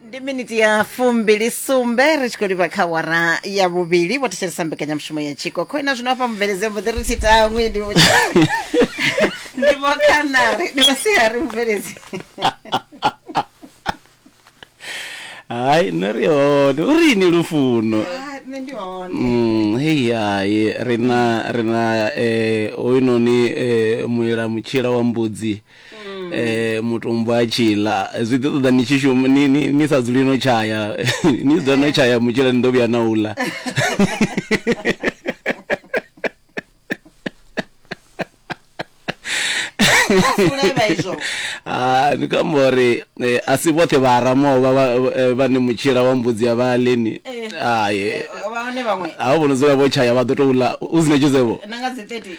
ndi miniti ya fumbili sumbe ri tshi khou livha kha wara ya vhuvhili vho thetshelesa mbekanyamushumo ya tshiko kho ina zwino hafha mubveledzeo mboḓi ri tshi tangwi ndi vho- ndi vho khanari ndi vhasiari mubveledzi hayi nṋe ri hone u ri ini lufuno Ah, nṋe ndi hone Mm, hei hai rina rina eh hoyunoni eh muila mutshila wa mbudzi mm. eh mutumbu a tshila zwi ḓi ṱoḓa ni tshi shuma ni ni ni sa dzuli no tshaya ni ḓo no tshaya mutshila ni ḓo vhuya na ula ah, ni kamba uri eh, a si vhoṱhe vha aramoo eh, vhane mutshila wa mbudzi ya vha leni eh, ai a vho no dzula vho tshaya vha ḓo tou ḽa u si na tshizevho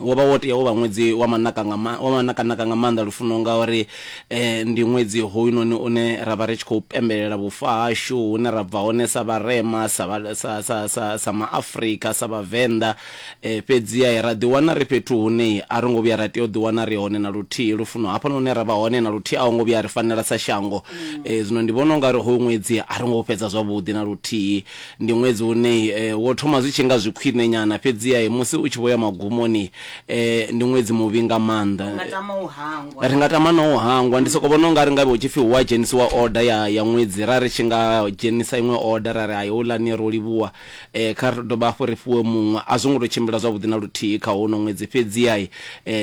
Wo vha wo tea u vha ṅwedzi wa manaka nga wa manakanaka nga maanḓa lufuno ngauri ndi ṅwedzi hoyunoni une ra vha ri tshi khou pembelela vhufa hashu hune ra bva hone sa vharema, sa sa sa sa sa maAfrika, sa vhavenḓa. Fhedziha ra ḓi wana ri fhethu hune a ro ngo vhuya ra tea u ḓi wana ri hone na luthihi lufuno hafhanoni hune ra vha hone na luthihi a ho ngo vhuya a ri fanela sa shango. Zwino ndi vhona ungari hoyu ṅwedzi a ro ngo u fhedza zwavhuḓi na luthihi Ndi ṅwedzi une wo thoma zwi tshi nga zwi khwine nyana, fhedziha musi u tshi vho ya magumoni, ndi ṅwedzi muvhi nga maanḓa. Ri nga tama na u hangwa. Ndi sokou vhona u nga ri ngavhe hu tshi pfi hu a dzhenisiwa order ya ya ṅwedzi, ra ri tshi nga dzhenisa iṅwe order ra ri hai houḽani ro livhuwa, kha ri dovhe hafhu ri fhiwe muṅwe. A zwo ngo tou tshimbila zwavhuḓi na luthihi kha hono ṅwedzi, fhedziha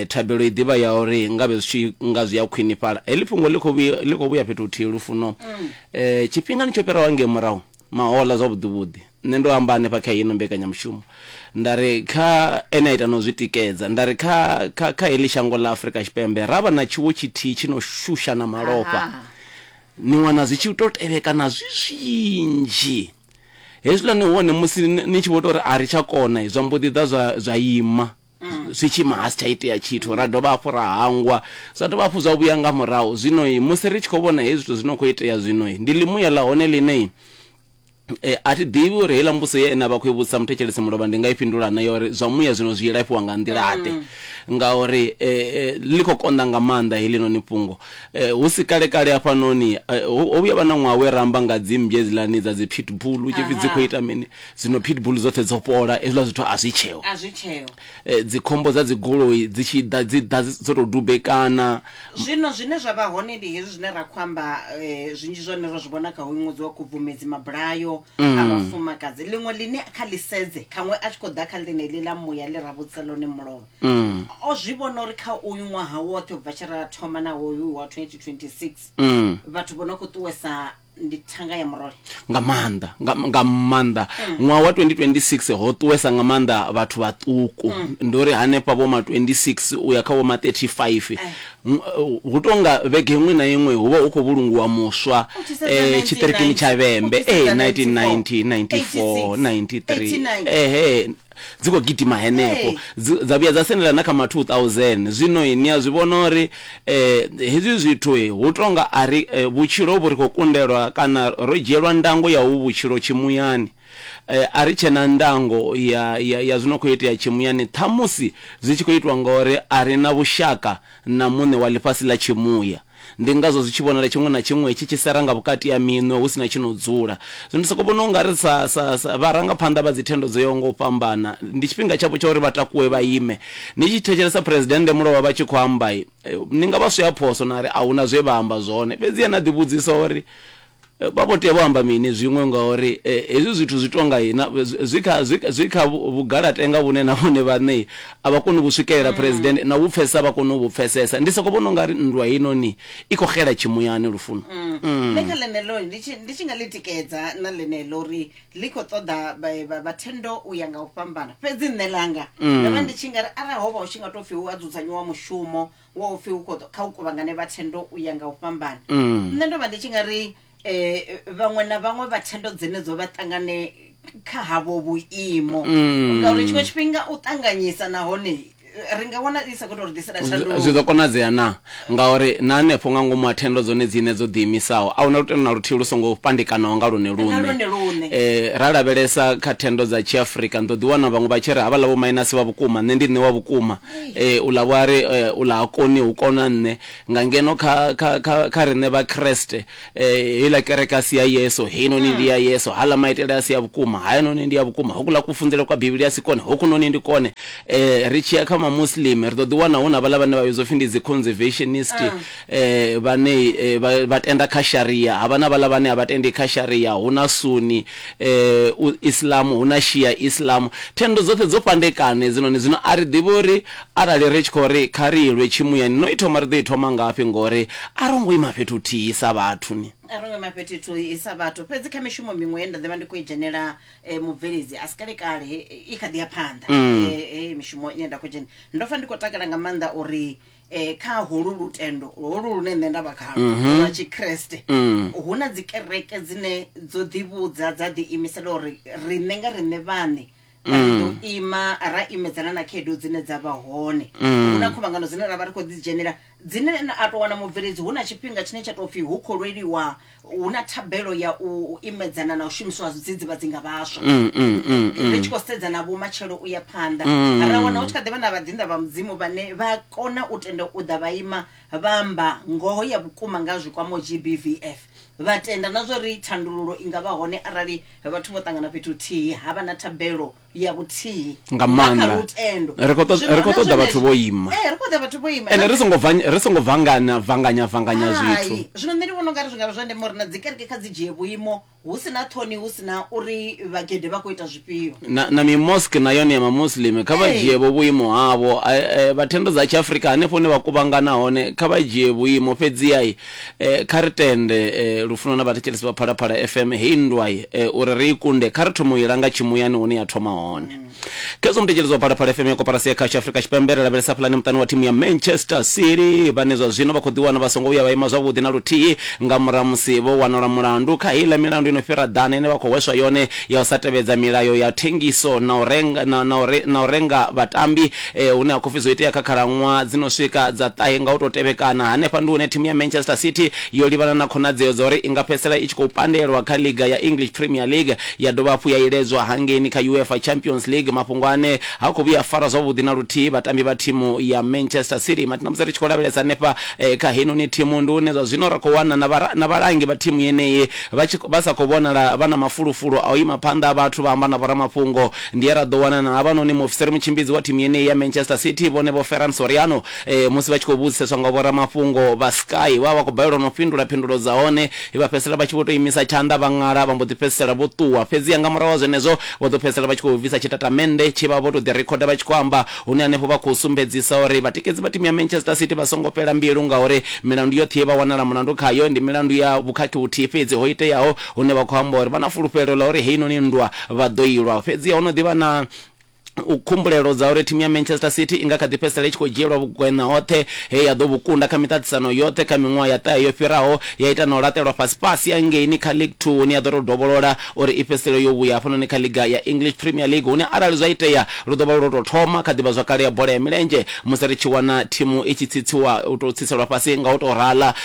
thabelo i ḓi vha ya uri ngavhe zwi tshi nga zwi a khwinifhala. Heḽi fhungo ḽi khou vhuya ḽi khou vhuya fhethu huthihi, Lufuno. Tshifhingani tsho fhiraho hangei murahu, Mahoḽa, Zwavhuḓi-vhuḓi, nṋe ndo amba hanefha kha ino mbekanyamushumo, nda ri, kha, ene a ita na u zwi tikedza, nda ri, kha, kha, kha heḽi shango ḽa Afrika Tshipembe ra vha na tshiwo tshithihi tshi no shusha na malofha. Aha. Ni wana zwi tshi tou tevhekana zwi zwinzhi. Hezwiḽa ni hone musi ni tshi vho tou ri a ri tsha kona, zwa mbo ḓi ḓa zwa, zwa ima. mm. zwi tshi ima ha si tsha itea tshithu ra dovha hafhu ra hangwa zwa dovha hafhu zwa vhuya nga murahu zwinoi musi ri tshi khou vhona hezwi zwithu zwi no khou itea zwinoi ndi ḽimuya ḽa hone ḽinei eh, a thi ḓivhi uri heiḽa mbuso ye ene a vha khou i vhudzisa muthetshelesi mulovha ndi nga i fhindula na yori zwa muya zwino zwi ilafhiwa nga nḓilaḓe mm. ngauri eh, eh, ḽi khou konḓa nga maanḓa heḽi noni fhungo eh, hu si kale kale hafhanoni eh, ho vhuya vha na ṅwaha we ramba nga dzimbye dzilani dza dzi pitbull u tshi pfi dzi khou ita mini Zwino pitbull dzoṱhe dzo fhola, hezwiḽa zwithu a zwi tsheho. A zwi tsheho. Dzikhombo dza dzigoloi dzi tshi ḓa, dzi ḓa dzo tou dubekana. Zwino zwine zwa vha hone ndi hezwi zwine ra khou amba, zwinzhi zwa hone ro zwi vhona kha hoyu ṅwedzi wa Khubvumedzi, mabulayo a vhafumakadzi. Ḽiṅwe ḽine kha ḽi sedze, khaṅwe a tshi khou ḓa kha ḽeneḽi ḽa muya ḽe ra vhudzisa ḽone mulovha, o zwi vhona uri kha uyu ṅwaha woṱhe u bva tshe ra thoma na hoyu wa 2026, vhathu vho no khou ṱuwesa ndi thanga ya muroyo nga maanḓa nga, nga maanḓa ṅwaha wa 2026 ho ṱuwesa nga maanḓa vhathu vhaṱuku ndo ri hanefha vho ma 26 u ya kha vho ma 35 M- uh, hu tou nga vhege iṅwe na iṅwe hu vha hu khou vhulungiwa muswa U tshi sedza eh, 1990, tshiṱirikini tsha vhembe u tshi eh, sedza 1990 94 93 89. ehe Dzi khou gidima henefho, dzi, dza vhuya dza sendela na kha ma 2000. Zwino ni a zwi vhona uri eh, hezwi zwithu hu tonga a ri, eh, vhutshilo vhu ri khou kundelwa, kana ro dzhielwa ndango ya hovhu vhutshilo tshimuyani. Eh, a ri tshe na ndango ya, ya, ya zwi no khou itea tshimuyani, ṱhamusi zwi tshi khou itwa ngauri a ri na vhushaka na Muṋe wa ḽifhasi ḽa tshimuya. Ndi ngazwo zwi tshi vhonala tshiṅwe na tshiṅwe tshi tshi sera nga vhukati ha minwe hu si na tshi no dzula. Zwino ndi sokou vhona u nga ri sa, sa, sa vharangaphanḓa vha dzithendo dzo yaho nga u fhambana, ndi tshifhinga tshavho tsha uri vha takuwe vha ime. Ni tshi thetshelesa Phresidennde Mulova vha tshi khou amba, ni nga vha swea phoso na ri a hu na zwe vha amba zwone. Fhedziha na ḓivhudzisa uri, Vha vho tea vho amba mini zwiṅwe ngauri hezwi zwithu zwi tou nga na, zwi kha, zwi, zwi kha vhugalatenga vhune na vhone vhaṋe a vha koni u vhu swikelela, Phresidennde, na u vhu pfesesa a vha koni u vhu pfesesa. Ndi sokou vhona u nga ri nndwa heinoni i khou xela tshimuyani, Lufuno. Nṋe kha ḽeneḽo, ndi tshi, ndi tshi nga ḽi tikedza na ḽeneḽo uri ḽi khou ṱoḓa vha, vha, vha thendo u ya nga u fhambana. Fhedzi nṋe ḽanga, ndo vha ndi tshi nga ri arali ho vha hu tshi nga tou pfi hu a dzudzanyiwa mushumo wa u pfi u khou ḓo- kha u kuvhangane vha thendo u ya nga u fhambana nṋe ndo vha ndi tshi nga ri um vhaṅwe na vhaṅwe vha thendo dzenedzo vha ṱangane kha havho vhuimo ngauri tshiṅwe tshifhinga u ṱanganyisa nahone eh, ri nga wana i sa khou tou ri ḓisela zwi zwi tshanduko ḓo konadzea na ngauri na hanefho nga ngomu ha thendo dzone dzine dzo ḓiimisaho a huna lutendo na luthihi lu songo pandekanaho nga lwone lwone lwone lune. Eh, ra lavhelesa kha thendo dza tshiafrika ni ḓo ḓiwana vhaṅwe vha tshi ri havhaḽa vho minasi vha vhukuma nṋe ndi nṋe wa vhukuma ee u ḽa vho a ri ee u ḽa ha koni hu kona nṋe nga ngeno kha kha kha kha riṋe vha kreste ee heiḽa kereke a si ya yeso heinoni ndi ya yeso haḽa maitele a si ya vhukuma hayanoni ndi ya vhukuma hokuḽa kufunzele kwa bivhili a si kone hokunoni ndi kone ee ri tshi ya kha mamuslim ri ḓo ḓi wana hu na vhaḽa vhane vha vhidzwa pfhi ndi dzi conservationist vhane vha tenda kha Sharia, havha na vhaḽa vhane a vha tendi kha Sharia, hu na Sunni Islam, hu na Shia Islam. Thendo dzoṱhe dzo fhandekana hedzinoni, zwino a ri ḓivhi uri arali ri tshi khou ri kha ri lwe tshimuyani, no i thoma ri ḓo i thoma ngafhi ngori a ro ngo ima fhethu huthihi sa vhathu ni. A ro ngo ima fhethu huthihi sa vhathu. Fhedzi kha mishumo miṅwe ye nda ḓi vha ndi khou i dzhenela mubveledzi a si kale-kale, i kha ḓi ya phanḓa heyi mishumo ine nda khou dzhena, ndo pfa ndi khou takala nga maanḓa uri eh kha holu lutendo holu lune nṋe nda vha khalo Mhm. lwa tshikreste Mm. hu na dzikereke dzine dzo ḓivhudza dza ḓiimisela uri riṋe nga riṋe vhaṋe ra Mm. ḓo ima ra imedzana na khaedu dzine dza vha hone Mm. hu na khuvhangano dzine ra vha ri khou ḓidzhenela dzine na- a tou wana mubveledzi hu na tshifhinga tshine tsha tou pfhi hu khou lweliwa hu na thabelo ya u u imedzana na u shumiswa ha zwidzidzivhadzi nga vhaswa Mm, mm, mm, mm. ri tshi khou sedza na vhomatshelo u ya phanḓa Mm. ra wana hu tshi kha ḓi vha na vhaḓinḓa vha mudzimu vhane vha kona u tenda u ḓa vha ima vha amba ngoho ya vhukuma nga zwikwamo gbvf vha tenda na zwo ri thandululo i nga vha hone arali vhathu vho ṱangana fhethu huthihi ha vha na thabelo ya vhuthihi nga maanḓa ri khou ṱoḓa vhathu vho ima eh, ri khou ṱoḓa vhathu vho ima ende ri songo ri songo vangana vanganya vanganya zwithu zwino nṋe ndi vhona ungari zwi ngavha zwa ndeme uri na dzi kereke kha dzi dzhie vhuimo hu si na ṱhoni hu si na uri vhagede vha khou ita zwifhio na, na mimoske na yone ya mamuslim kha vha dzhie vho vhuimo havho vhathendo dza tshiafrika hanefho hune vha kuvhangana hone kha vha dzhie vhuimo fhedziai Eh, kha ri tende eh, lufuno na vhathetshelesi vha phalaphala fm hei nndwai eh, uri ri i kunde kha ri thome u i langa tshimuyani hune ya thoma hone khezwo muthetshelesi wa phalaphala fm ya koporasi ya khasho afrika tshipembe ri lavhelesa pulane muṱani wa thimu ya manchester city vhane zwa zwino vha khou ḓiwana vha songo vhuya vha ima zwavhuḓi na luthihi nga murahu musi vho wanala mulandu kha heiḽa milandu ino fhira ḓana ine vha khou hweswa yone ya u sa tevhedza milayo ya thengiso na u renga, na, na, u re, na u renga vhatambi Ee, hune ha khou pfi zwo itea kha khalaṅwaha dzi no swika dza ṱahe nga u tou tevhekana. Hanefha ndi hune thimu ya Manchester City yo livhana na khonadzeo dza uri i nga fhedzisela i tshi khou pandelwa kha ḽiga ya English Premier League ya dovha hafhu ya iledzwa hangeini kha UEFA Champions League, mafhungo ane ha khou vhuya a fara zwavhuḓi na luthihi vhatambi vha thimu ya Manchester City. Matina, musi ri tshi khou lavhelesa hanefha kha heinoni thimu, ndi hune zwa zwino ra khou wana na vha na vhalangi vha thimu yeneyi vha tshi vha sa khou vhonala vha na mafulufulu a u ima phanḓa ha vhathu vha amba na vhoramafhungo Ndi he ra ḓo wana na havhanoni muofisiri mutshimbidzi wa thimu yeneyi ya Manchester City, vhone Vho Ferran Soriano, musi vha tshi khou vhudziseswa nga vhoramafhungo vha Sky, vha vha vha khou balelwa na u fhindula phindulo dza hone, he vha fhedzisela vha tshi vho tou imisa tshanḓa vha ṅala vha mbo ḓi fhedzisela vho ṱuwa. Fhedziha nga murahu ha zwenezwo, vho ḓo fhedzisela vha tshi khou bvisa tshitatamennde tshe vha vha vho tou ḓirikhoda vha tshi khou amba, hune hanefho vha khou sumbedzisa uri vhatikedzi vha thimu ya Manchester City vha songo fhela mbilu ngauri milandu yoṱhe ye vha wanala mulandu khayo ndi milandu ya vhukhakhi vhuthihi fhedzi ho iteaho hune vha khou amba uri vha na fulufhelo ḽa uri heinoni nndwa vha ḓo i lwa. Fhedzi ho no ḓi vha na khumbulelo dza uri thimu ya Manchester City i nga kha ḓi fhedzisela i tshi khou dzhielwa vhugweṋa hoṱhe he ya ḓo vhu kunda kha miṱaṱisano yoṱhe kha miṅwaha ya ṱahe yo fhiraho, ya ita na u laṱelwa fhasifhasi hangeini kha League Two hune ya ḓo tou dovholola uri i fhedzisele yo vhuya hafhanoni kha ḽiga ya English Premier League hune arali zwa itea lu ḓo vha lu lwo tou thoma kha ḓivhazwakale ya bola ya milenzhe musi ri tshi wana thimu i tshi tsitsiwa, u tou tsitselwa fhasi nga u tou rala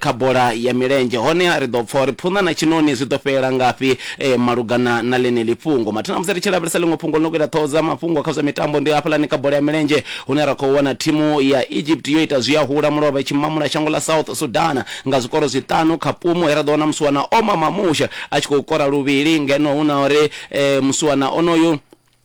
kha bola ya milenzhe. Honeha ri ḓo pfa uri phunḓa na tshiṋoni zwi ḓo fhelela ngafhi malugana na ḽeneḽi fhungo. Mathina musi ri tshi lavhelesa ḽiṅwe fhungo ḽi no khou ita ṱhoho dza mafhungo kha zwa mitambo, ndi hafhaḽani kha bola ya milenzhe hune ra khou wana thimu ya Egypt yo ita zwiahula mulovha i tshi mamula shango ḽa South Sudan nga zwikoro zwiṱanu kha pumu he ra ḓo wana musiwana Omar Mamouche a tshi khou kora luvhili ngeno hu na uri musiwana onoyu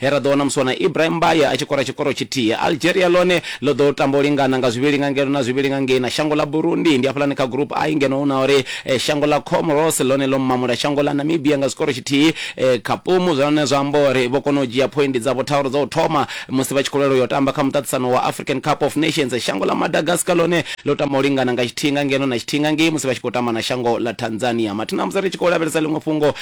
He ra ḓo wana musi wana Ibrahim Mbaye a tshi kora tshikoro tshithihi. Algeria ḽone ḽo ḓo tamba u lingana nga zwivhili nga ngeno na zwivhili nga ngei na shango ḽa Burundi. Ndi hafhaḽani kha Group I ngeno hu na uri shango ḽa Comoros ḽone ḽo mamula shango ḽa Namibia nga tshikoro tshithihi kha ṱumu zwine zwa amba uri vho kona u dzhia phoindi dzavho tharu dza u thoma musi vha tshi khou lwela u yo tamba kha muṱaṱisano wa African Cup of Nations. Shango ḽa Madagascar ḽone ḽo tamba u lingana nga tshithihi nga ngeno na tshithihi nga ngei musi vha tshi khou tamba na shango ḽa Tanzania. Mathina a musi ri tshi khou lavhelesa ḽiṅwe fhungo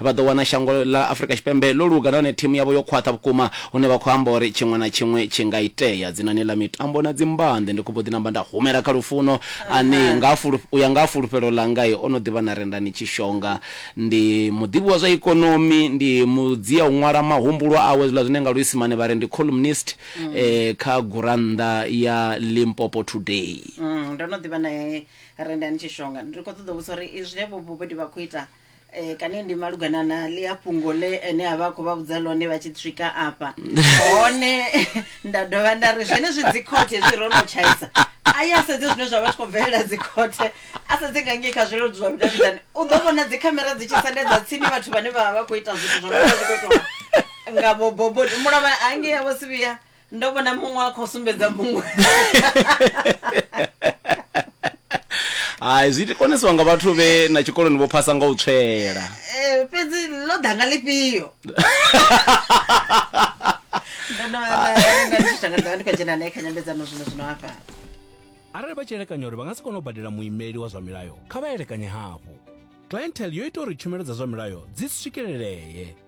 vha ḓo wana shango ḽa Afrika Tshipembe ḽo luga nahone thimu yavho yo khwaṱha vhukuma hune vha khou amba uri tshiṅwe na tshiṅwe tshi nga itea. Dzinani ḽa mitambo na dzimbande, ndi khou mbo ḓi namba nda humela kha Lufuno ane nga ha fulu, u ya nga ha fulufhelo ḽanga o no ḓivha na Rendani Tshishonga. Ndi muḓivhi wa zwa ikonomi, ndi mudzia u ṅwala mahumbulwa awe, zwiḽa zwine nga Luisimane vha ri ndi columnist kha gurannḓa ya Limpopo Today. Ndo no ḓivha nae Rendani Tshishonga. Ndi khou ṱoḓa u vhudzisa uri zwine vho Bobodi vha khou ita eh, kani ndi malugana na ḽia fhungo ḽe ene a vha a khou vha vhudza ḽone vha tshi swika afha hone nda dovha nda ri zwenezwi dzikhothe hezwi ro no tshaisa a ye a sedze zwine zwa vha tshi khou bvelela dzikhothe a sedze nga ngei kha zwileludzi zwa vhudavhidzani u ḓo vhona dzikhamera dzi tshi sendedza tsini vhathu vhane vha vha vha khou ita zwithu zwo no vha zwi khou itiwa nga vhoboboni mulovha hangei a vho sivhiya ndo vhona muṅwe a khou sumbedza muṅwe hai zwi konisiwa nga vhathu vhe na tshikoloni vho phasa nga u tswela Eh, fhedzi ḽo ḓa nga ḽifhio ndo no vha nda- nda ndi tshi tanga ḓovha ndi khou dzhena nae kha nyambedzano zwino zwino hafha arali vha tshi elekanya uri vha nga si kone u badela muimeli wa zwa milayo kha vha elekanye hafhu clientele yo ita uri tshumelo dza zwa milayo dzi swikelelee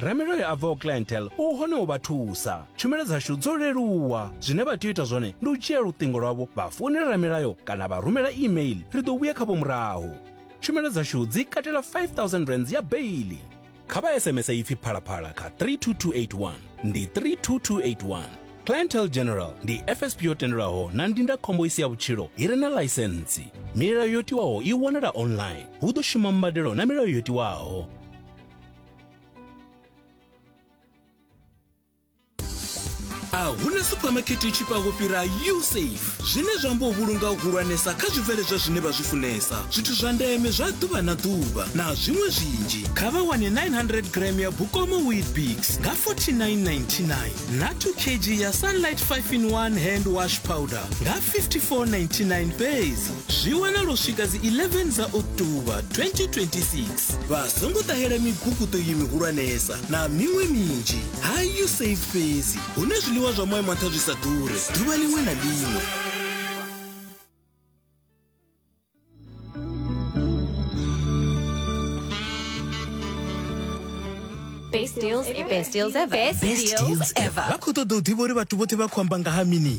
Ramiloyo a bvaho Clientele u hone u vha thusa. Tshumelo dzashu dzo leluwa. Zwine vha tea u ita zwone ndi u dzhia luṱingo lwavho vha founela Ramilayo kana vha rumela e-mail, ri ḓo vhuya khavho murahu. Tshumelo dzashu dzi katela R5000 ya beiḽi. Kha vha SMS ipfi Phalaphala kha 32281, ndi 32281. Clientele General ndi FSP yo tendelwaho na ndindakhombo i si ya vhutshilo i re na ḽaisentsi. Milayo yo tiwaho i wanala online. Hu ḓo shuma mbadelo na milayo yo tiwaho. a huna suphamakete tshi fha fhira usafe zwine zwa amba u vhulunga u hulwanesa kha zwibveledzwa zwine vha zwi funesa zwithu zwa ndeme zwa ḓuvha na ḓuvha na zwiṅwe zwinzhi kha vha wane 900 gram ya bukomo weetbix nga 4999 na 2 kg ya sunlight 5 in 1 hand wash powder nga 5499 fhedzi zwi wanalo swika dzi 11 dza oktoba 2026 vha songo ṱahela miguguṱo iyi mihulwanesa na miṅwe minzhi ha usaid fhedzi hune zwiḽiwa zwa moya maṱha zwi sa ḓure ḓuvha ḽiṅwe na ḽiṅwe Best deals ever. Best deals ever. Best deals ever. Vha khou ṱoḓa u ḓivha uri vhathu vhoṱhe vha khou amba nga ha mini?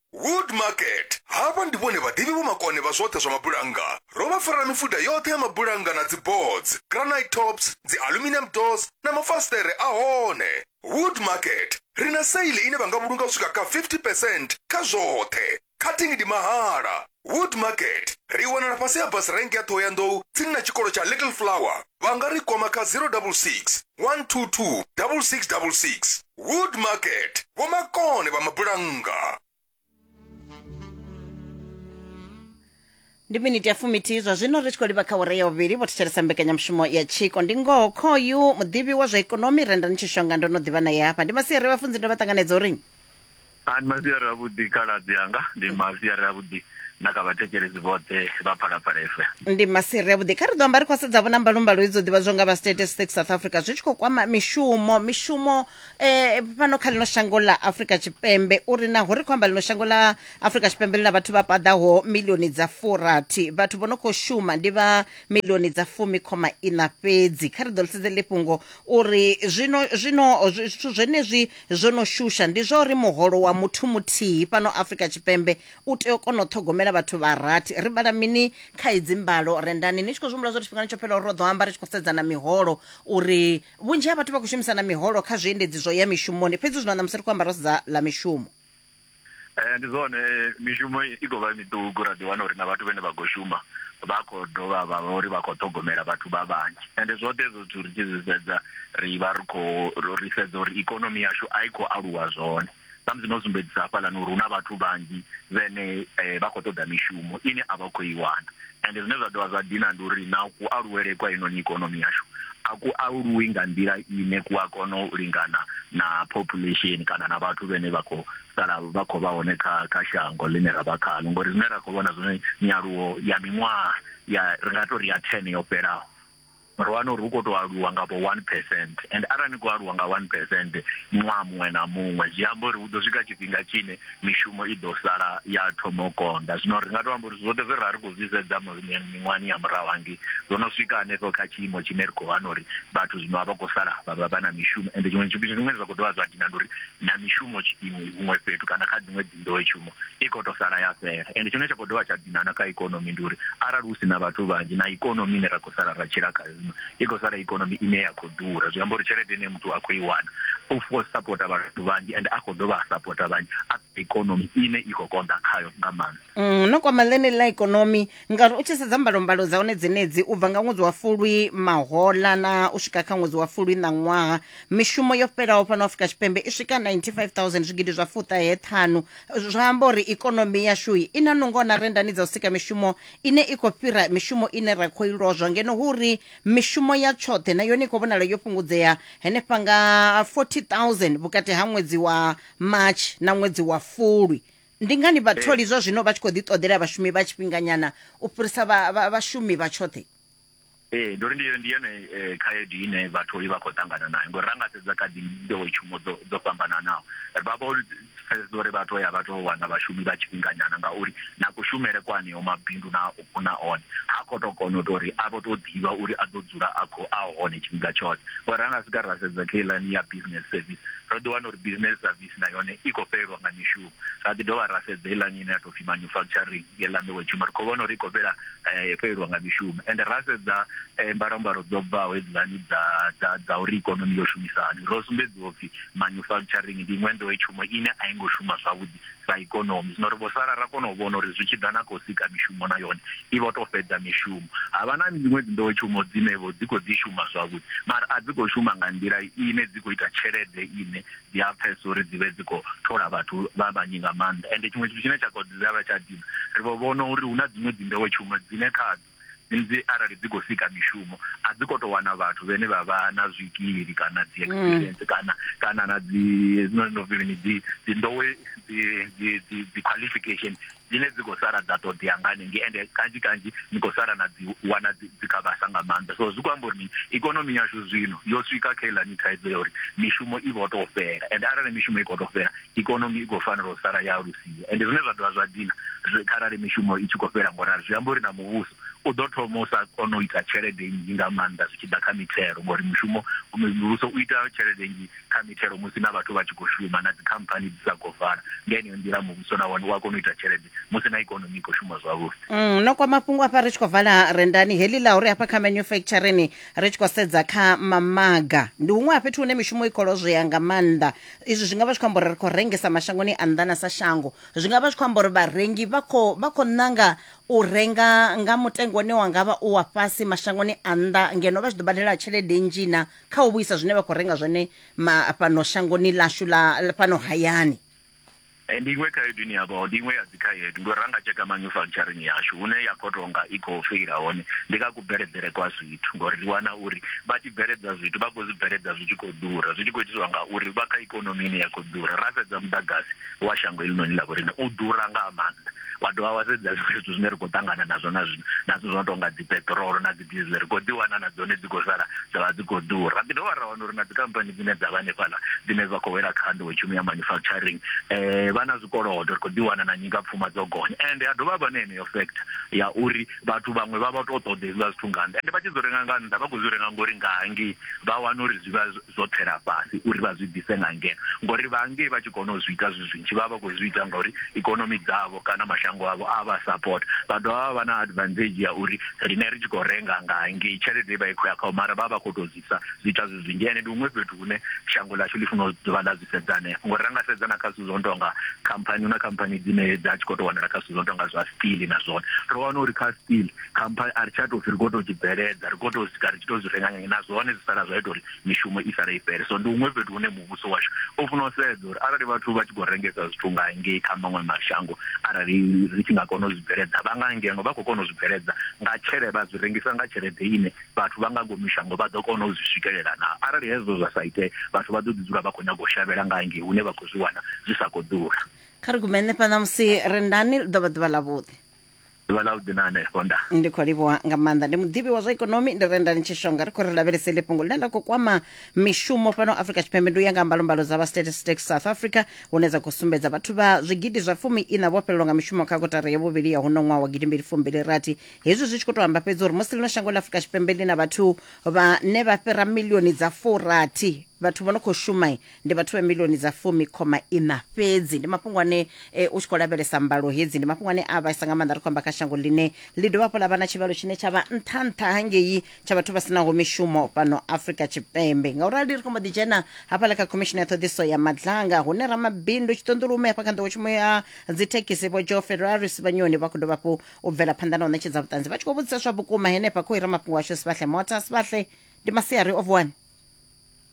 wood market havha ndi vhone vhaḓivhi vhomakone vha zwoṱhe zwa mabulannga ro vha farela mifuda yoṱhe ya mabulannga na dziboards granite tops dzi aluminium doors na mafasiṱere a hone wood market ri na seili ine vha nga vhulunga u swika kha 50 percent kha zwoṱhe cutting ndi mahala wood market ri wanala fhasi ha bus rank ya ṱhohoyanḓou tsini na tshikolo tsha little flower vha nga ri kwama kha 066 122 6666. Wood Market, Vho Makone vha Mabulannga. ndi miniti ya fumithihi zwa zwino ri tshi khou livha kha ure ya vhuvhili vho thetshelesa mbekanyamushumo ya tshiko ndi ngoho khoyu muḓivhi wa zwa ikonomi renda ni tshishonga ndo no ḓivha naye hafha ndi masiari vhafunzi ndo vha ṱanganedza uri A Ndi masiari avhuḓi khaladzi anga, ndi masiari avhuḓi na kha vhathetshelesi vhoṱhe vha Phalaphala FM. Ndi masiri avhuḓi kha ri ḓo amba ri khou sedzavho na mbalumbalo idzo ḓivhadzwa nga vha statistics south africa zwi tshi khou kwama mishumo mishumo eh, fhano kha ḽino shango ḽa afrika tshipembe uri naho ri khou amba ḽino shango ḽa afrika tshipembe ḽi na vhathu vha paḓaho milioni dza furathi vhathu vho no khou shuma ndi vha milioni dza fumi khoma ina fhedzi kha ri ḓo ḽisedze ḽi fhungo uri zwino zwino zwithu zwenezwi zwo no shusha ndi zwa uri muholo wa muthu muthihi fhano afrika tshipembe u tea u kona u ṱhogomela vhathu vha rathi ri vhala mini kha idzi mbalo rendani ni tshi khou zwihumbula zwa tshifhingani tsho fhela uri ro ḓo amba ri tshi khou sedzana miholo uri vhunzhi ha vhathu vha khou shumisana miholo kha zwiendedzi zwo ya mishumoni fhedzi zwino ṋamusi ri khou amba ro sedza ḽa mishumo Eh ndi zwone mishumo i khou vha miṱuku ra ḓi wana uri na vhathu vhane vha khou shuma vha khou dovha vha vha uri vha khou ṱhogomela vhathu vha vhanzhi ende zwoṱhe ezwo zwithu ri tshi zwi sedza ri vha ri khou ri sedza uri ikonomi yashu a i khou aluwa zwone samusi no sumbedzisa hafhaḽani uri hu na vhathu vhanzhi vhene eh, vha khou ṱoḓa mishumo ine a vha khou i wana Ende zwine zwa dovha zwa dina ndi uri na ku aluwele kwa inoni ikonomi yashu a ku aluwi nga nḓila ine ku a kona u lingana na population kana na vhathu vhene vha khou sala vha khou vha hone kha kha shango ḽine ra vha khaḽo ngori zwine ra khou vhona zwone nyaluwo ya miṅwaha ya ri nga tori ya 10 yo fhelaho ro wana uri hu khou tou aluwa nga vho one percent and arali ni khou aluwa nga one percent ṅwaha muṅwe na muṅwe zwi amba uri hu ḓo swika tshifhinga tshine mishumo i ḓo sala ya thoma u konḓa zwino ri nga tou amba uri zwoṱhe zwe ra ri khou zwi sedza miṅwahani ya murahu hangei zwo no swika hanefho kha tshiimo tshine ri khou wana uri vhathu zwino a vha khou sala vha vha vha na mishumo ende tshiṅwe tshifhinga zwiṅwe zwa khou dovha zwa dina ndi uri na mishumo tshiimo huṅwe fhethu kana kha dziṅwe nḓowetshumo i khou tou sala ya fhela. Ende tshine tsha khou dovha tsha dina na kha ikonomi ndi uri arali hu si na vhathu vhanzhi na ikonomi ine ra khou sala ra tshila khayo zwino i khou sala ikonomi ine ya khou ḓura. Zwi amba uri tshelede ine muthu a khou i wana u khou sapota vhathu vhanzhi ende a khou dovha a sapota vhanzhi a ikonomi ine i khou konḓa khayo nga maanḓa. Mm, no kwama ḽeneḽi ḽa ikonomi ngauri u tshi sedza mbalombalo dza hone dzenedzi u bva nga ṅwedzi wa fulwi mahola na u swika kha ṅwedzi wa fulwi na ṅwaha mishumo yo fhelaho fhano afrika tshipembe i swika 95000 zwigidi zwa fuṱahe ṱhanu zwa amba uri ikonomi yashu i na nungo na rendani dza u sika mishumo ine i khou fhira mishumo ine ra khou ilozwa ngeno hu uri mishumo ya tshoṱhe na yone i khou vhonala yo fhungudzea henefha nga 40000 vhukati ha ṅwedzi wa march na ṅwedzi wa fulwi Ndi ngani vhatholi zwa zwino vha tshi khou ḓiṱoḓela vhashumi vha tshifhinganyana u fhirisa vhashumi vha tshoṱhe? Ee, ndi uri ndi ndi yone eh, khaedu ine vhatholi vha khou ṱangana nayo ngori ra nga sedza kha dzi nḓowetshumo dzo dzo fhambananaho ri vha vho pfesesa uri vha tou ya vha tou wana vhashumi vha tshifhinganyana ngauri na kushumele kwa aneo mabindu na na one ha khou tou kona u tou ri a vho tou ḓivha uri a ḓo dzula a khou a hone tshifhinga tshoṱhe ngori ra nga sika ra sedza kha iḽani ya business service ro ḓi wana uri business service na yone i khou fhelelwa nga mishumo ra ḓi dovha ra sedza heiḽani ine ya tou pfhi manufacturing heiḽa nḓowetshumo ri khou vhona uri i khou fhela eh, fhelelwa nga mishumo ende ra sedza eh, mbalambalo dzo bvaho hedzilani dza dza dza uri ikonomi yo shumisa hani ro sumbedziwa upfhi manufacturing ndi iṅwe nḓowetshumo ine a i ngo shuma zwavhuḓi sa ikonomi zwino ri vho sala ra kona u vhona uri zwi tshi ḓa na khou sika mishumo na yone i vho tou fhedza mishumo ha vha na dziṅwe dzinḓowetshumo dzine vho dzi khou dzi shuma zwavhuḓi mara a dzi khou shuma nga nḓila ine dzi khou ita tshelede ine dzi a pfesa uri dzi vhe dzi khou thola vhathu vha vhanyi nga maanḓa ende tshiṅwe tshithu tshine tsha kha dzi vha tsha dina ri vho vhona uri hu na dziṅwe dzi nḓowetshumo dzine khadzo dzi arali dzi khou sika mishumo a dzi khou tou wana vhathu vhane vha vha na zwikili kana dzi mm. experience kana kana na dzi no no vhili dzi dzi ndowe dzi dzi dzi qualification dzine dzi khou sala dza ṱoḓea nga hanengei ende kanzhi kanzhi ni khou sala na dzi wana dzi kha vhasa nga maanḓa so zwi khou amba uri ni ikonomi yashu zwino yo swika kha ilani thaidzo ya uri mishumo i vho tou fhela ende arali mishumo i khou tou fhela ikonomi i khou fanela u sala ya alusiwa ende zwine zwa dovha zwa dina kharali mishumo i tshi khou fhela ngo rali zwi amba uri na muvhuso u ḓo thoma u sa kona u ita tshelede nnzhi nga maanḓa zwi tshi ḓa kha mithelo ngori mushumo muvhuso u ita tshelede nnzhi kha mithelo musi na vhathu vha tshi khou shuma na dzikhamphani dzi sa khou vala. Nga yeneyo nḓila, muvhuso na wone u a kona u ita tshelede musi na ikonomi i khou shuma zwavhuḓi. Mm, no kwa mafhungo afha ri tshi khou vala rendani heḽi ḽa uri hafha kha manufacturing ri tshi khou sedza kha mamaga ndi huṅwe ha fhethu hune mishumo i khou lozwea nga maanḓa. Izwi zwi nga vha zwi khou amba uri ri khou rengisa mashangoni a nnḓa na sa shango. Zwi nga vha zwi khou amba uri vharengi vha khou vha khou ṋanga u renga nga mutengo une wa nga vha u wa fhasi mashangoni a nnḓa ngeno vha tshi ḓo badela tshelede nnzhi na kha u vhuisa zwine vha khou renga zwone ma fhano shangoni ḽashu ḽa ḽa fhano hayani. Eh, ndi iṅwe khaedu ine ya vha ndi iṅwe ya dzikhaedu ngori ra nga tsheka manufacturing yashu hune ya khou tonga i khou feila hone ndi kha kubveledzele kwa zwithu ngori ri wana uri vha tshi bveledza zwithu vha khou zwi bveledza zwi tshi khou ḓura zwi tshi khou itiswa nga uri vha kha ikonomi ine ya khou ḓura ra sedza muḓagasi wa shango helinoni ḽa vhorine u ḓura nga maanḓa wa dovha wa sedza zwiṅwe zwithu zwine ri khou ṱangana nazwo na zwino na zwithu zwo no tonga dzi peṱirolo na diesel ri khou ḓi wana na dzone dzi khou sala dza vha dzi khou ḓura ri dovha ra wana uri na dzikhamphani dzine dza vha hanefhaḽa dzine dza khou wela kha nḓowetshumo ya manufacturing um vha na zwikolodo ri khou ḓi wana na nyingapfuma dzo gonya ende ha dovha vha na heneyo factor ya uri vhathu vhaṅwe vha vha tou ṱoḓa hezwiḽa zwithu nga nnḓa ende vha tshi dzo renga nga nnḓa vha khou zwi renga ngori nga hangei vha wana uri zwi vha zwo tsela fhasi uri vha zwi ḓise nga ngeno, ngori vha ngei vha tshi kona u zwi ita zwi zwinzhi vha vha vha khou zwi ita ngauri ikonomi dzavho kana mashango avho a vha sapota. Vha dovha vha vha na advantage ya uri riṋe ri tshi khou renga nga ngei tshelede i vha i khou ya khavho mara vha vha vha khou tou zwi ita zwi ita zwi zwinzhi ende ndi huṅwe fhethu hune shango ḽashu ḽi funa u dovha ḽa zwi sedza hanefho ngori ra nga sedza na kha zwithu zwo no tou nga khamphani, hu na khamphani dzine dza tshi khou tou wanala kha zwithu zwo no tou nga zwa steel na zwone ro wana uri kha steel. khamphani a ri tsha tou pfhi ri khou tou tshi bveledza ri khou tou swika ri tshi tou zwi renga ngenge na zwone zwi sala zwa ita uri mishumo i sale i fhele so ndi huṅwe fhethu hune muvhuso washu u funa u sedza uri arali vhathu vha tshi khou rengesa zwithu nga ngei kha maṅwe mashango arali ri tshi nga kona u zwi bveledza vha nga ngeno vha khou kona u zwi bveledza nga tshelede vha zwi rengisa nga tshelede ine vhathu vha nga ngomu shango vha ḓo kona u zwi swikelela na arali hezwo zwa sa itee vhathu vha ḓo ḓi dzula vha khou nyaga u shavhela nga ngei hune vha khou zwi wana zwi sa khou ḓura kha ri gume nṋe fha ṋamusi rendani ḽi ḓo vha ḓuvha ḽavhuḓi ḓuvha ḽa vhuḓi na hanefho nda ndi khou livhuwa nga maanḓa ndi muḓivhi wa zwa ikonomi ndi renda ni tshishonga ri khou ri lavhelese ḽi fhungo ḽine ḽa khou kwama mishumo fhano afrika tshipembe ndi u ya nga mbalombalo dza vha statistics south africa hune dza khou sumbedza vhathu vha zwigidi zwa fumi ina vho fhelelwa nga mishumo kha kotara ya vhuvhili ya huno ṅwaha wa gidimbili fumbili rathi hezwi zwi tshi khou tou amba fhedzi uri musi ḽino shango ḽa afrika tshipembe ḽi na vhathu vhane vha fhira milioni dza furathi vhathu vho no khou shuma Ndi vhathu vha miḽioni dza fumi khoma iṋa fhedzi. Ndi mafhungo ane u tshi khou lavhelesa mbalo hedzi, ndi mafhungo ane a vhaisa nga maanḓa ri khou amba kha shango ḽine ḽi dovha hafhu ḽa vha na tshivhalo tshine tsha vha nṱha-nṱha hangei tsha vhathu vha si naho mishumo fhano Afrika Tshipembe. Ngaurali ri khou mbo ḓi dzhena hafhaḽa kha Khomishini ya Ṱhoḓisiso ya Madlanga hune ramabindu tshiṱonḓulume hafha kha nḓowetshumo ya dzithekhisi Vho Joe Ferraris Vhanyoni vha khou dovha hafhu u bvela phanḓa na u ṋetshedza vhuṱanzi vha tshi khou vhudzisa zwa vhukuma henefha khou ira mafhungo ashu Sibadhle Motha. Sibadhle, ndi masiari o vuwani?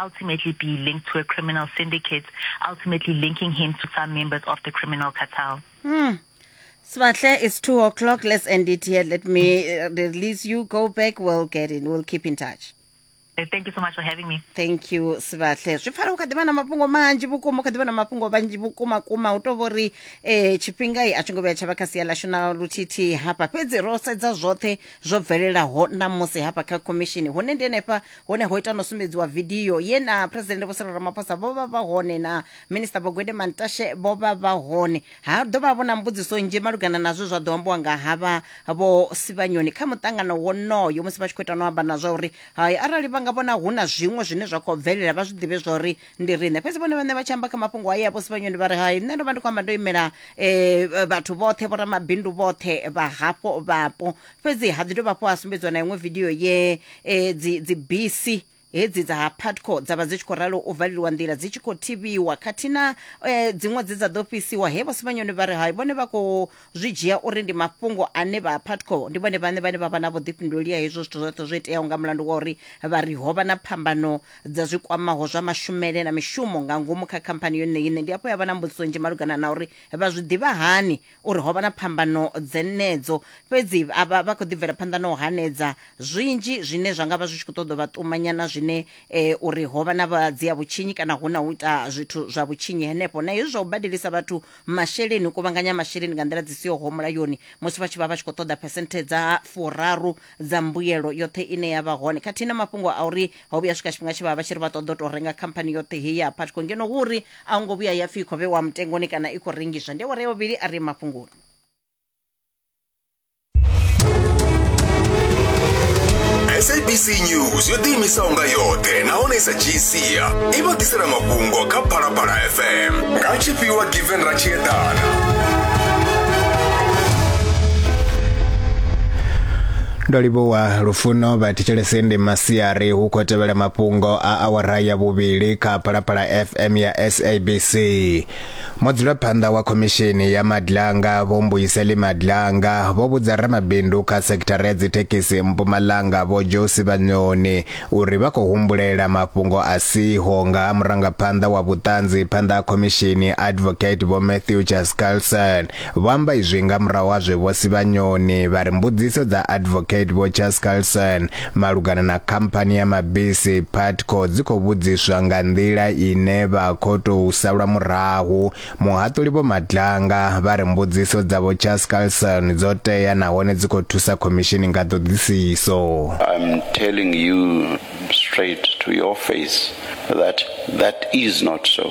ultimately be linked to a criminal syndicate, ultimately linking him to some members of the criminal cartel. Mm. Svatle, it's two o'clock. Let's end it here. Let me uh, release you. Go back. We'll get in. We'll keep in touch. Eh, thank you so much for having me thank you sivahle zwi pfala u kha ḓivha na mafhungo manzhi vhukuma u kha ḓivha na mafhungo manzhi vhukuma kuma u tou vhori um eh, tshifhingai a tshi ngo vhuya tsha vha kha sia ḽashu na luthithi hafha fhedzi ro sedza zwoṱhe zwo bvelelaho na musi hafha kha khomishini hune ndi henefha hone ho ita no sumbedziwa vidio ye na president vho Cyril Ramaphosa vho vha vha hone na minister vho Gwede Mantashe vho vha vha hone ha ḓo vha vho na mbudziso nzhi malugana na zwe zwa ḓo ambiwa nga havha vho Sivhanyoni kha muṱangano wonoyo musi vha tshi khou ita no amba na zwa uri hai arali vha nga vhona hu na zwiṅwe zwine zwa khou bvelela vha zwi ḓivhe zwa uri ndi riṋe fhedzi vhone vhaṋe vha tshi amba kha mafhungo haya vho Sivhanyoni vha ri hai nṋe ndo vha ndi khou amba ndo imela eh, vhathu vhoṱhe vho ramabindu vhoṱhe vha hafho vhapo fhedzi ha ḓi dovha hafhu ha sumbedziwa na iṅwe vidio ye eh, dzi dzi bisi hedzi dza ha patco dza vha dzi tshi khou ralo u valeliwa nḓila dzi tshi khou thivhiwa khathihi na eh, dziṅwe dze dza ḓo fhisiwa he vhosimanyoni vha ri hai vhone vha khou zwi dzhia uri ndi mafhungo ane vha patco ndi vhone vhane vhane vha vha na vhuḓifhinduleli ha hezwo zwithu zwoṱhe zwo iteaho nga mulandu wa uri vha ri ho vha na phambano dza zwi kwamaho zwa mashumele na mishumo nga ngomu kha khamphani yone ine ndi afho ya vha na mbudziso nzhi malugana na uri vha zwi ḓivha hani uri ho vha na phambano dzenedzo, fhedzi a vha vha khou ḓi bvela phanḓa na u hanedza zwinzhi zwine zwa nga vha zwi tshi khou ṱoḓa u vha ṱumanya na zwine eh, uri ho vha na vha dzia vhutshinyi kana hu na u ita zwithu zwa vhutshinyi henefho na hezwi zwa u badelisa vhathu masheleni u kuvhanganya masheleni nga nḓila dzi siho ho mulayoni musi vha tshi vha vha tshi khou ṱoḓa phesenthe dza furaru dza mbuyelo yoṱhe ine ya vha hone khathihi na mafhungo a uri ho vhuya swika tshifhinga tshe vha vha tshi ri vha ṱoḓa u tou renga khamphani yoṱhe heyi ya patco ngeno hu uri a hu ngo vhuya ya pfhi i khou vhewa mutengoni kana i khou rengiswa ndi awara ya vhuvhili a ri mafhungoni sabc news yo ḓiimisaho nga yoṱhe nahone i sa dzhii sia i vha ḓisela mafhungo kha phalaphala fm nga tshifhiwa given ra tshi eḓana ndo livhuwa lufuno vha thetshelese ndi masiari hu khou tevhela mafhungo a awara ya vhuvhili kha phalaphala fm ya sabc mudzulaphanḓa wa khomishini ya madlanga vho mbuyiseli madlanga vho vhudza ramabindu kha sekithara ya dzithekhisi mpumalanga vho josi vhanyoni uri vha khou humbulela mafhungo a siho nga ha murangaphanḓa wa vhuṱanzi phanḓa ha khomishini advocate vho matthew chascarlson Vho amba izwi nga murahu ha zwe Vho Sibanyoni vha ri mbudziso dza Advocate Vho Charles Carlson malugana na khamphani ya mabisi Putco dzi khou vhudziswa nga nḓila ine vha khou tou salwa murahu. Muhaṱuli Vho Madlanga vha ri mbudziso dza Vho Charles Carlson dzo tea nahone dzi khou thusa khomishini nga ṱhoḓisiso. I'm telling you straight to your face that that is not so.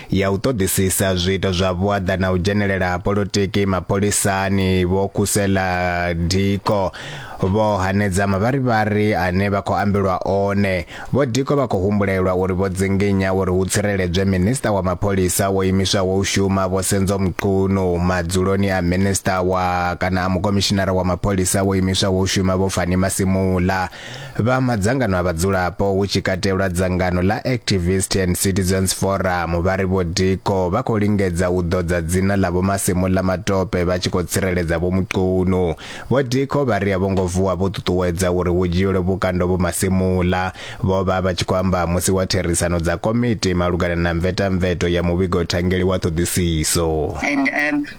ya u ṱoḓisisa zwiito zwa vhuaḓa na u dzhenelela ha polotiki mapholisani vho Khusela Diko vho hanedza mavharivhari ane vha khou ambelwa one vho Diko vha khou humbulelwa uri vho dzinginya uri hu tsireledzwe minista wa mapholisa wo imiswaho u shuma vho Senzo Mchunu madzuloni a minista wa kana a mukomishinara wa mapholisa wo imiswaho u shuma vho Fani Masimula Vha madzangano a vhadzulapo hu tshi katelwa dzangano ḽa Activist and Citizens Forum vha ri vho Diko vha khou lingedza u ḓodza dzina ḽa vho Masemola Matope vha tshi khou tsireledza vho Muqunu. Vho Diko vha ri a vho ngo vuwa vho ṱuṱuwedza uri hu dzhielwe vhukando vho Masemola. Vho vha vha tshi khou amba musi wa therisano dza komiti malugana na mvetamveto ya muvhigo thangeli wa ṱhoḓisiso. And um,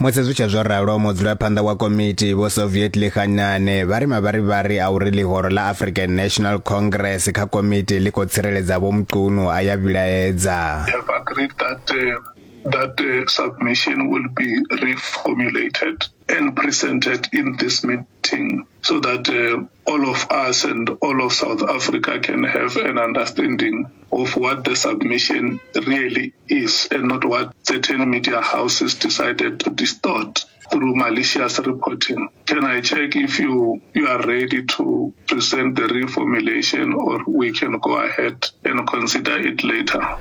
Musi zwi tshe zwo ralo, mudzulaphanḓa wa komiti Vho Soviet Lihanyane vha ri mavharivhari a uri ḽihoro ḽa African National Congress kha komiti ḽi khou tsireledza Vho Mchunu a ya vhilaedza. have agreed that uh, that uh, submission will be reformulated and presented in this meeting so that uh, all of us and all of South Africa can have an understanding of what the submission really is and not what certain media houses decided to distort through malicious reporting. Can I check if you, you are ready to present the reformulation or we can go ahead and consider it later?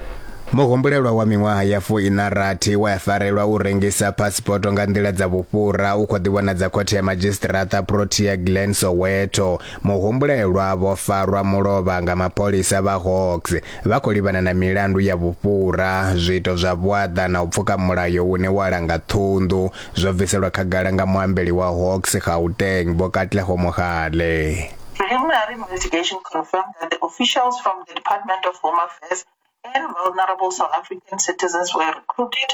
muhumbulelwa wa miṅwaha ya fuiṋa rathi wa ya farelwa u rengisa phasipoto nga nḓila dza vhufhura u khou ḓivhonadza khothe ya madzhisiṱiraṱa protea glen soweto Muhumbulelwa vho farwa mulovha nga mapholisa vha Hawks vha khou livhana na milandu ya vhufhura, zwiito zwa vhuaḓa na u pfuka mulayo une wa langa ṱhunḓu, zwo bviselwa khagala nga muambeli wa Hawks Gauteng, Vho Katlego Mohale. Preliminary investigation confirmed that the officials from the Department of Home Affairs and vulnerable South African citizens were recruited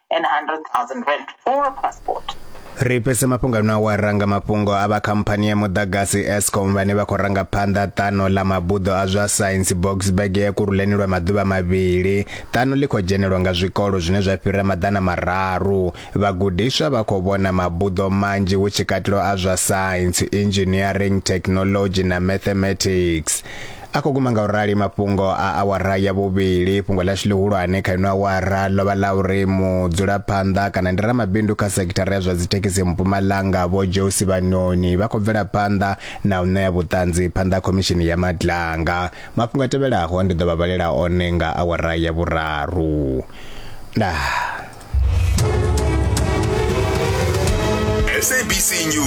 and 100,000 rand for a passport. Ri fhese mafhungo ano awara nga mafhungo a vha khamphani ya muḓagasi Eskom vhane vha khou ranga phanḓa ṱano ḽa mabuḓo a zwa Science Boksburg ya kuruleni lwa maḓuvha mavhili. Ṱano ḽi khou dzhenelwa nga zwikolo zwine zwa fhira maḓana mararu. Vhagudiswa vha khou vhona mabuḓo manzhi hu tshi katelwa a zwa Science, Engineering, Technology na Mathematics. a khou guma nga u rali mafhungo a awara ya vhuvhili fhungo ḽashu ḽihulwane kha ino awara ḽo vha ḽa uri mudzulaphanḓa kana ndi ramabindu kha sekithara ya zwa dzithekhisi mpumalanga vho josi vhanoni vha khou bvela phanḓa na u ṋea vhuṱanzi phanḓa khomishini ya madlanga mafhungo a tevhelaho ndi ḓo vha vhalela one nga awara ya vhuraru ndaa